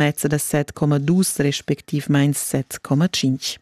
mezza da 7,2 respectivmain 7,5.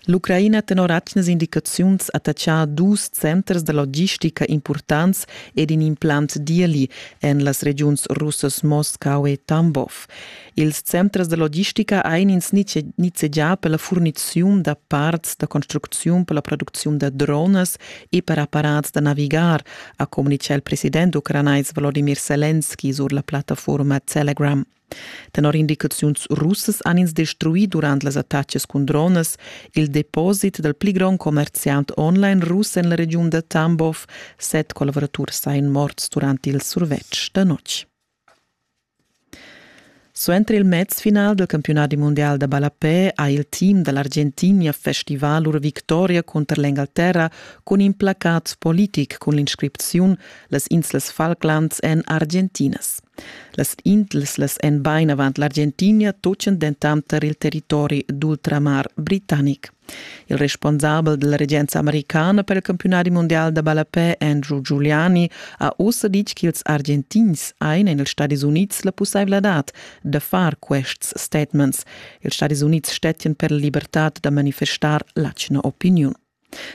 L'Ucraina tenor atgnas indicaziuns attachà dus centers da logistica impurtants ed in implant d'ieli en las regiuns russas Moscau e Tambov. Ils centers da logistica ein ins nizzegià per la furniziun da parts da construcziun per la producziun da dronas e per apparats da navigar, ha communitgà il president ucranais Volodimir Selenski sur la plattafurma Telegram. Tenor indicaziuns russas han ins destruì durant las attacas cun dronas il deposit dal pli grond commerziant online russ en la regiun da Tambov. Set collavuraturs sain morts durant il survetsch da notg. Suenter il mezfinal dal campiunadi mundial da ballapè ha il team da l'Argentinia festivà lur victoria cunter l'Engalterra cun in placat politic cun l'inscripziun «Las inslas Falklands èn argentinas». Las inslas èn bain avant l'Argentinia, tutgan dentant tar il territori d'ultramar britannic. Il responsabel dalla regenza americana per il campiunadi mondial da ballapè Andrew Giuliani ha ussa ditg ch'ils Argentins ein en ils Stadis Unids la pusseivladad da far quests statements. Ils Stadis Unids stettian per la libertad da manifestar l'atgna opiniun.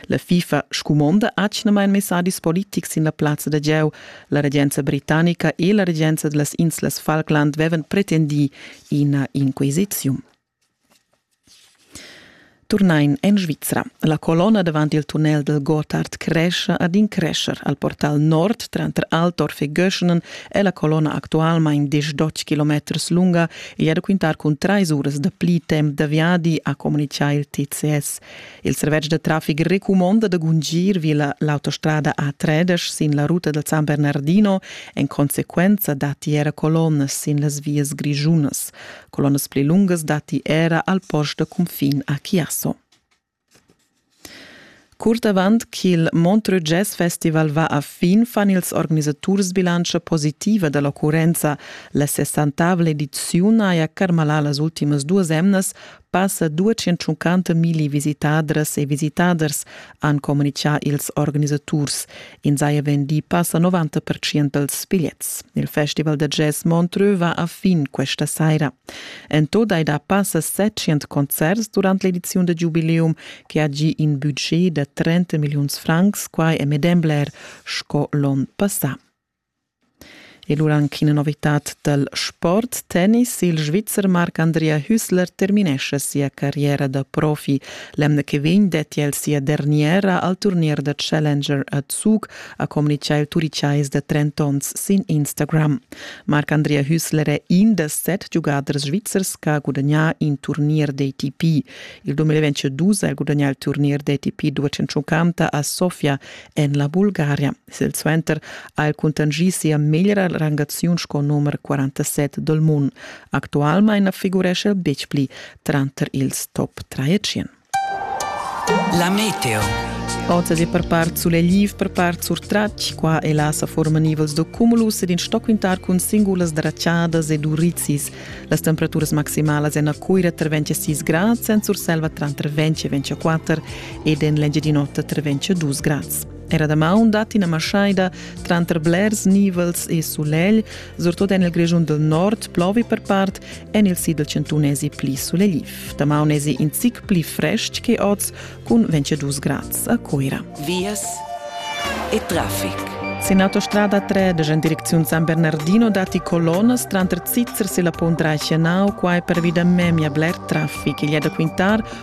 La FIFA scumonda atgnamain messadis politics sin la plazza da gieu. La regenza britannica e la regenza dallas inslas Falkland vevan pretendi ina inquisiziun. Turnain en Svizra. La colonna davant il tunnel dal Gotthard crescha ad in crescher. Al portal nord, tranter Altorf e Göschenen, è la colonna actualmain diesch kilometers lunga e è da quintar cun trais uras da pli temp da viadi, ha communitgà il TCS. Il servetsch da traffic recumonda da gungir vi l'autostrada A3 sin la ruta dal San Bernardino. En consequenza datti era colonnas sin las vias grischunas. Colonnas pli lungas datti era al post da cunfin a Chiasso. Curt avant ch'il Montreux Jazz Festival va a fin fan ils organisaturs bilantscha positiva da l'occurrenza. La 60 ediziun haja carmalà las ultimas duas emnas passa 250 milli visitadras e visitaders han communitgà ils organisaturs. In saja vendì passa 90% dals bigliets. Il festival da jazz Montreux va a fin questa saira. En tot hai da passa 700 concerts durant l'ediziun da giubileum che ha gì in budget da 30 milliuns francs, quai è medem bler sco l'onn passà. E lura anc ina novitad dal sport, tennis. Il Svizzer Marc Andrea Hüssler terminescha sia carriera da profi. L'emna che vegn detti el sia derniera al turnier da Challenger a Zug, ha communitgà il turicais da 30 onns sin Instagram. Marc Andrea Hüssler è in da set giugaders svizzers che ha gudagnà in turnier d'ATP. Il 2022 ha gudagnà il turnier d'ATP 250 a Sofia en la Bulgaria. Silsuenter ha el cuntanschì sia meglra rangaziun sco numer 47 dal mund. Actualmain na figurescha el betg pli tranter ils top 300. La meteo. Oz è per part sulegliv, per part surtratg. Qua e là sa forman nivels da cumulus ed in stoquintar cun singulas dracciadas ed urizis. Las temperaturas maximalas en a Cuira tra 26 grads, en Surselva tranter 20 e 24 ed en l'Engiadin'Ota tra 20 e 2 grads. Era damaun dat ina maschaida tranter blers nivels e sulegl, surtut en il Grischun del Nord, plovi per part, en il sid del Centun esi pli sulegliv. Damaun esi in zic pli frestg che oz, cun 22 grads a Coira. Vias e traffic. Sin autostrada 3 de in direcziun San Bernardino dati colonas tranter Zizers e la Pont Reichenau, quai pervi da memia bler traffic. Il da Quintar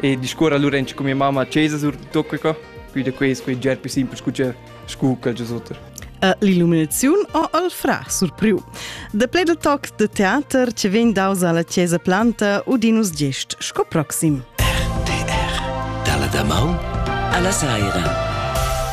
E discuorra allura anche con mia mamma a chesa sur tutto qua. Quindi questo è già più semplice che scu quel giusotter. E l'illuminazione o il fra surpriu. De play del toc de teater ce vegn daus alla chiesa planta Udinus Gest, sco proxim. RTR, dalla Damau alla Saira.